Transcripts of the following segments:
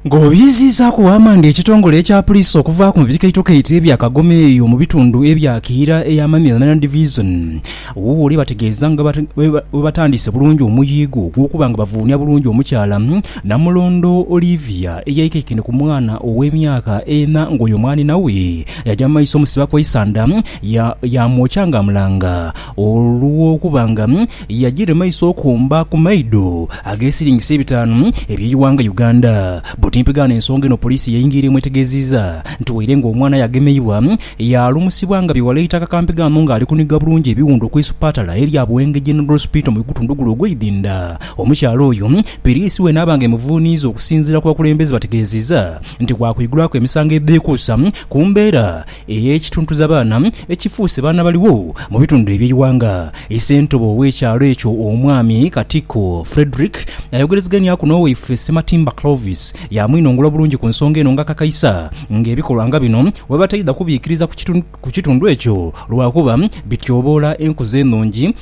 Ng'obyiziizaaku bwamanda ekitongole ekya Puliisi okuvaaku mu bikaitokaito ebya kagoma eyo mu bitundu ebya Kiira eya Mamila Land Division, Wuuwule bategeeza nga bwebatandise bulungi omuyiigo ogw'okuba nga bavuunia bulungi omukyala Namulondo Olivia eyaikaikaine ku mwana ow'emyaka ena ng'oyo mwanhina we yaja mu maiso omusiba kw'eisanda yaamwokya ng'amulanga Olw'okuba nga yajiira emaiso okumba ku maido ag'esiringisa ebitaanu eby'eighanga Uganda. Butimpegaano ensonga eno poliisi yaingiira emwetegeziiza nti waire nga omwana aye agemeibwa, yaalumusibwa nga bighala eitaka kampegaano nga ali kuniga bulungi ebiwundu okw'eisupatala erya Buwenge General Hospital mu Igutundugulu ogw'eidhinda. Omukyala oyo piriisi we naaba nga emuvuuniiza okusinziira ku bakulembeze bategeziiza nti waakwigulwaku emisango edheekuusa ku mbeera ey'ekituntuzabaana ekifuuse baana baligho mu bitundu eby'eighanga. Ssentebe ow'ekyalo ekyo Omwami Katikko Fredrick ayogerezeganyaku n'owaife Ssematimba Clovis yaamwinongula bulungi ku nsonga eno ng'akakaisa ng'ebikolwa nga bino bwebataidha kubiikiriza ku kitundu ekyo lwakuba bityoboola enkuza enungi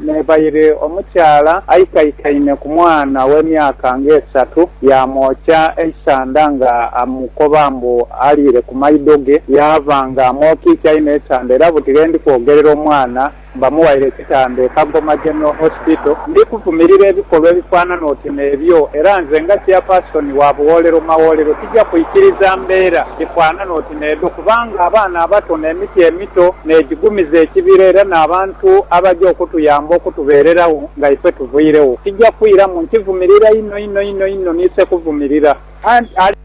N'ebaire omukyala aikaikaine ku mwana w'emyaka ng'esatu, yaamwokya eisanda nga amukoba mbu aliire ku maido ge. Yaava nga amwokiikiaine eitanda era buti ghe ndi kwogerera omwana bamuwaire ekitanda e Kagoma General Hospital. Ndi kuvumirira ebikolwa ebifaanana oti n'ebyo era nze nga Chairperson wa Buwoolero Mawoolero tija kwikiriza mbeera dhifaanana oti. N'edho kubanga abaana abato n'emiti emito n'egigumiza ekibira era n'abantu abaja okutuyamba okutubeereragho nga ife tuvairegho. Kija kwiramu nkivumirira inho inho inho inho ni sekuvumirira. Anti.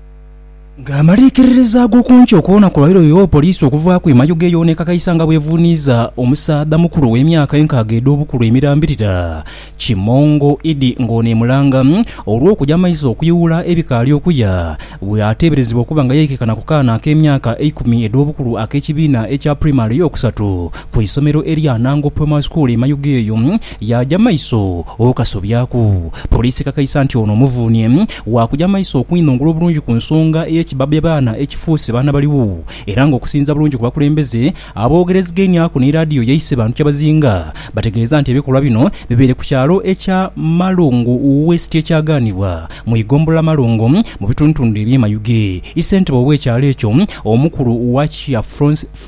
Nga amaliikiririza ag'oku nkyo koona kulwairwe yo poliisi okuvaaku emayuge eyoonekakaisa nga bw'evuuniiza omusaadha mukulu ow'emyaka enkaaga edh'obukulu emirambirira, Kimongo idi ng'ono emulanga olw'okuja amaiso okuyuula ebikaali okuya, bwe ateeberezebwa okuba nga yaikaikana ku kaana ak'emyaka eikumi edh'obukulu ak'ekibiina ekya pulayimale ey'okusatu ku isomero erya Anango Primary School e Mayuge eyo yaaja amaiso okasobyaku poliisi ekakaisa nti ono omuvuunhie waakuja amaiso okwinhongula obulungi ku nsonga ey'ekibabi abaana ekifuuse baana baligho era ng'okusinziira bulungi ku bakulembeze Aboogerezigeniaku ni laadiyo yaise bantu kyabazinga bategeeza nti ebikolwa bino bibaire ku kyalo ekya Malungu West ekyagaanibwa mu igombolola Malungu mu bitundutundu eby'e Mayuge. Isentebe ow'ekyalo ekyo omukulu Wakya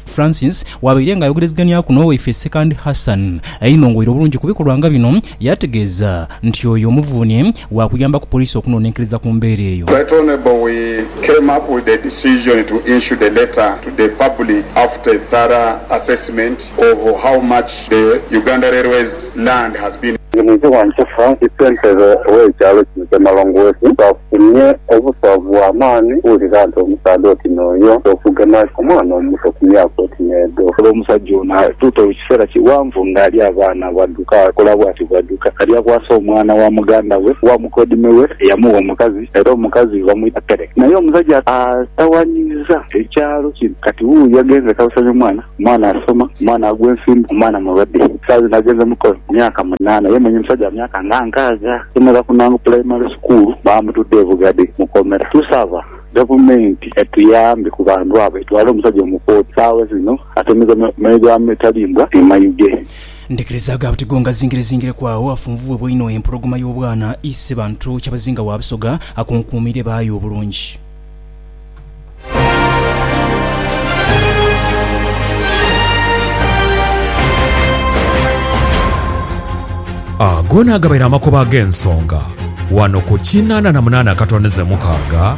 Francis wabaire nga ayogereziganiaku n'owaife Sekandi Hassan Einongoira obulungi ku bikolwa nga bino, Yategeeza nti oyo omuvuuni waakuyamba ku poliisi okunonenkereza ku mbeera eyo. Right Honourable we came up with the decision to issue the letter to the public after a thorough assessment of how much the Uganda Railways land has been. Nginhike wa Nkufa ni ssentebe w'ekyalo kino kya Malongooti baafunye obuswavu bwa maani okuwulira nti omusaadha oti n'oyo okugema omwana omuto ku myaka oti n'edho. Olw'omusajja ono atuuta ekiseera kighanvu ng'alya abaana. Bwadduka akola bwati, bwadduka alya bwasa omwana wa muganda we, wa mukodime we eyamugha omukazi, era omukazi bamwita Peleki. Naye omusajja atawanyiiza ekyalo kino. Kati wuuyo agenze kabusanyo mwana, omwana asoma, omwana agwa ensimbu, omwana mulwadde. Saawa dhino agenze mukole ku myaka munaana. Ye mwenyi musajja wa myaka nga nkaaga. Yasomera ku Nangu Pulayimale Sukuulu, baamutudha e Bugade mu komera. Tusaba Gavumenti etuyambe ku bantu abo, etwale omusajja omu kooti. Saawa dhino atemeza meere gha mitalimbwa e Mayuge. Ndhikiriza gha buti go ngazingire-zingireku agho afunvubwebwa inho empologoma y'obwana, Isebantu Kyabazinga wa Busoga akunkuumiire baayo obulungi. Ago naagabaire amakoba ag'ensonga wano ku kinaana na munaana akatondeze mukaaga.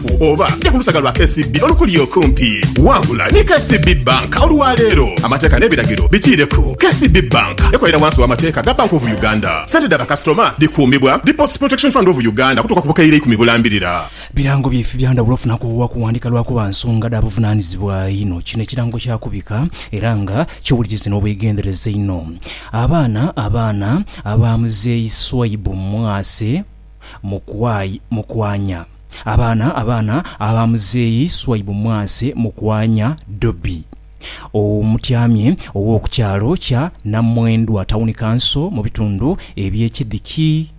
Oba ja ku lusaga lwa KCB olukuli okumpi. Wangula ni KCB Bank olwa leero. Amateeka n'ebiragiro bikiireku. KCB Bank ekolera wansi w'amateeka ga Bank of Uganda. Sente dha bakasitoma dhikuumibwa Deposit Protection Fund of Uganda okutuuka ku bukaire ikumi bulambirira. Birango byaife bya ndhawulo ofuna ku bwa kuwandika lwakuba nsonga dha buvunanizibwa inho. Kino ekirango kya kubika era nga kyewulikizi n'obwegendereza inho. Abaana Abaana aba Muzeeyi Swaibu Mwase Mukwaya Mukwanya. Abaana abaana aba muzeeyi Swaibu Mwase Mukwanya Dobi omutyamye ow'oku kyalo kya Namwendwa Tawuni Kanso mu bitundu eby'e Kidhiki,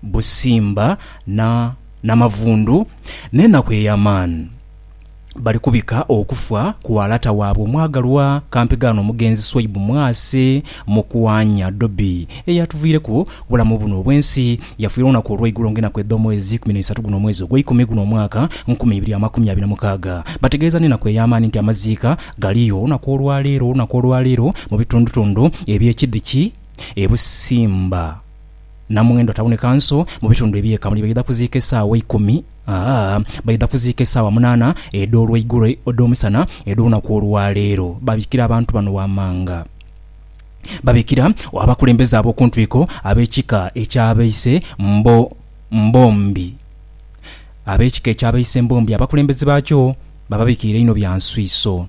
Busimba na Namavundu n'enaku ey'amaani. bali kubika okufa kwa lata waabwe omwagalwa kampigaano omugenzi Swaibu Mwasi Mukwanya Dobi eyatuviireku obulamu buno obw'ensi. Yafiire olunaku olw'eigulo ng'enaku edh'omwezi ikumi n'eisatu guno omwezi ogw'eikumi guno omwaka nkumi ibiri amakumi abiri na mukaaga. Bategeeza n'enaku ey'amaani nti amaziika galiyo olunaku olwaleero olunaku olwaleero mu bitundutundu eby'ekidhi ki e Busimba. Namwendo ataboneka nso mu bitundu eby'eka muli baidha kuziika esaawa eikumi, aa baidha kuziika esaawa munaana edh'olweigulo, edh'omusana edh'olunaku olwa leero. Babikira abantu bano wamanga. Babikira abakulembeze ab'oku ntwiko ab'ekika eky'abaise mbo, mbombi. Ab'ekika eky'abaise mbombi abakulembeze baakyo bababikiira inho bya nswiiso.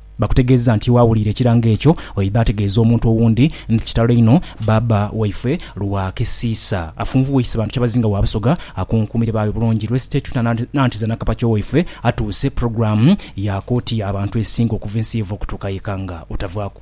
Bakutegeeza nti waawuliira ekirango ekyo, oidha ategeeza omuntu owundi nti kitalo inho baaba waifwe Lwakisiisa afunvuwaise bantu kyabazinga wa Busoga akunkumire baawe bulungi lwesite tuna nanti za Nakapakyo waifwe atuuse program ya kooti ya bantu esinga okuva ensi yeva okutuuka yeka nga otavaaku